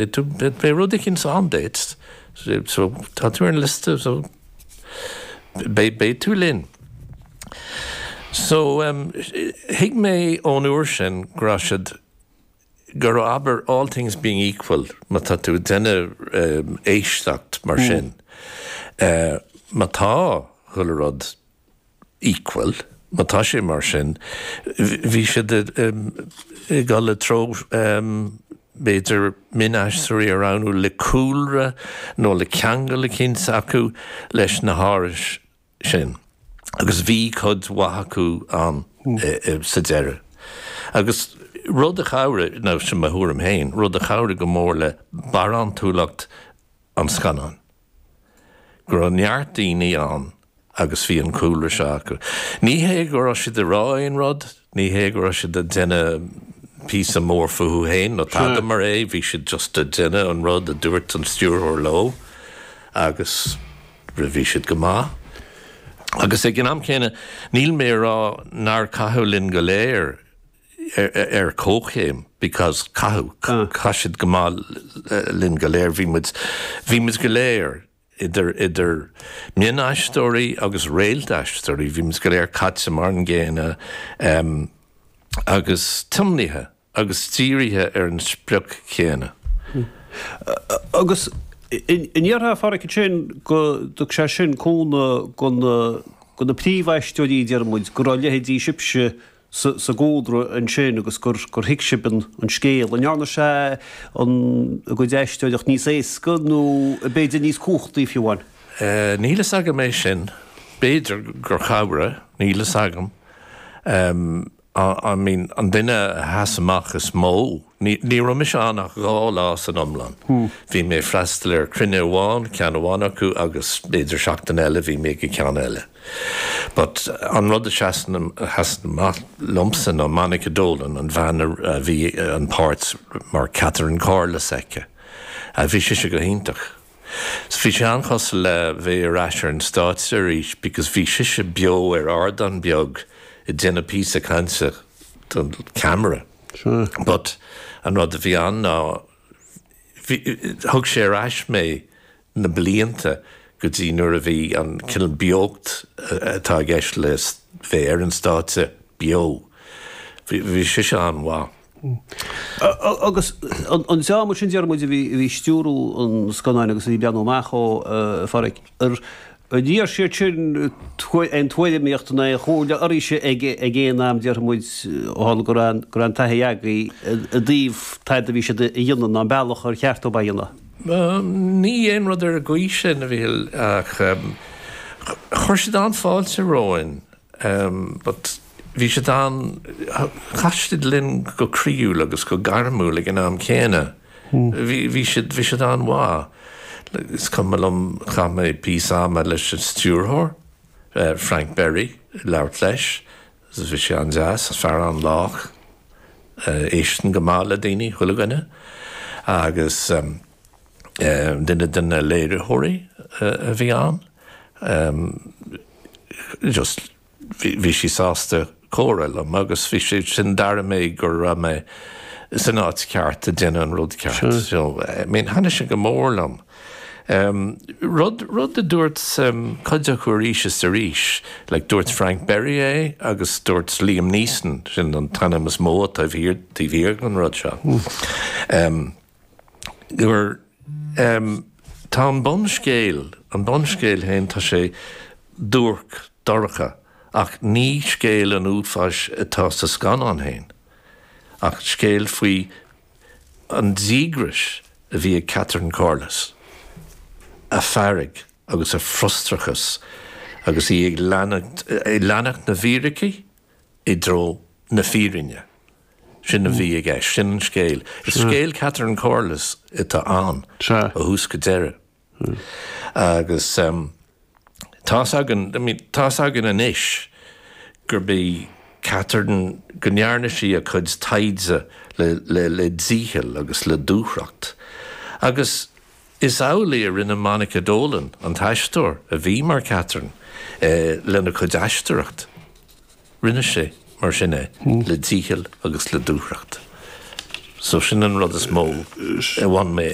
Beidh rud eicint ann duit. So, tá tú ar an liosta, so, beidh tú linn. So, thuig mé ón uair sin go raibh siad, go raibh, abair, all things being equal, má tá tú ag déanamh éisteacht mar sin, má tá chuile rud, equal, má tá sé mar sin, bhí siad ag dul i dtreo b'fhéidir mionaisteoirí a roghnú le cúlra nó le ceangal eicint acu leis na hárais sin agus bhí cuid mhaith acu ann sa deireadh. Agus rud a chabhraigh, ná sin mo thuairim féin, rud a chabhraigh go mór le barántúlacht an scannáin. go raibh neart daoine ann agus bhí an cúlra seo acu. Ní hé go raibh siad ag rá aon rud, ní hé go raibh siad ag déanamh píosa mór fúthu féin nó tada mar é, bhí siad just ag déanamh an rud a dúirt an stiúrthóir leo agus bhí siad go maith. Agus ag an am céanna, níl mé ag rá nár caitheadh linn go léir, ar comhchéim because caitheadh, chaith siad go maith linn go léir, bhí muid, bhí muid go léir, idir, idir mhionaisteoirí agus réalt-aisteoirí, bhí muid go léir caite mar an gcéanna agus tiomnaithe agus dírithe ar an sprioc chéanna. Agus an ndéarfá, Pháraic, ansin go dtug sé sin cúnamh do na, do na príomhaisteoirí, déarfaidh muid, go raibh leithéidí sibhse sa gcúlra ansin agus gur thuig sibh an scéal, an ndearna sé a gcuid aisteoireacht níos éasca nó b'fhéidir níos cumhachtaí fiú amháin? Níl fhios agam é sin. B'fhéidir gur chabhraigh, níl fhios agam. I mean an duine a sheas amach is mó. Ní raibh mise ann ach dhá lá san iomlán. Bhí mé ag freastal ar chruinniú amháin, ceann amháin acu, agus b'fhéidir seachtain eile bhí mé ag an cheann eile. But an rud a sheasann amach liomsa ná Monica Dolan, an bhean a bhí an páirt mar Catherine Corless aici. Bhí sise go hiontach. Bhí sé an-chosúil le bheith ar ais ar an stáitse arís because bhí sise beo ar ardán beag ag déanamh píosa cainte. don cheamara. But an rud a bhí ann ná bhí, thug sé ar ais mé na blianta go dtí nuair a bhí an cineál beocht atá i gceist le bheith ar an stáitse beo. Bhí, bhí sise an-mhaith. Agus an, an dream ansin, déarfaidh muid, a bhí, a bhí ag stiúradh an scannáin agus a bhí ag breathnú amach dó, a, a Phádhraic? ar iarr siad sin aon tuairimíocht ná aon chomhairle oraibhse ag aon am, déarfaimid, ó tharla go raibh an taithí agaibh i dtaobh tada a bhí siad a dhéanamh ná an bealach ar cheart dóibh é a dhéanamh. Ní dhearna, aon rud ar an gcaoi sin, a Mhicil, ach chuir siad an-fháilte romhainn, but bhí siad an-, chaith siad linn go croíúil agus go gairmiúil ag an am céanna. Bhí siad, bhí siad an-mhaith. Is cuimhin liom, chaith mé píosa ama leis an stiúrthóir, Frank Berry, ag labhairt leis. Bhí sé an-deas, fear an-lách, éisteann go maith le daoine, chuile dhuine. Agus duine de na léiritheoirí a bhí ann, just, Bhí sí sásta comhrá liom agus bhí sé sin d'airigh mé go raibh mé san áit cheart ag déanamh an rud ceart. So, I mean, thaithnigh sé go mór liom. Rud a dúirt cuid acu arís is arís, like dúirt Frank Berry é agus dúirt Liam Neeson, sin an t-ainm is mó atá taobh thiar den rud seo. gur, tá an bunscéal, an bunscéal féin, tá sé duairc, dorcha ach ní scéal an uafáis atá sa scannán féin ach scéal faoi an díograis a bhí ag Catherine Corless, a fearg agus a frustrachas agus í ag leanacht na bhfíricí i dtreo na fírinne. Sin a bhí i gceist, sin an scéal. Is scéal Catherine Corless atá ann ó thús go deireadh. Agus tá's againn, I mean, tá's againn anois gurb í Catherine, go ndearna sí a cuid taighde le dícheall agus le dúthracht. Agus Is amhlaidh a rinne Monica Dolan, an t-aisteoir a bhí mar Catherine, é lena cuid aisteoireacht. Rinne sí, mar sin, é le dícheall agus le dúthracht. So sin an rud is mó a bhain mé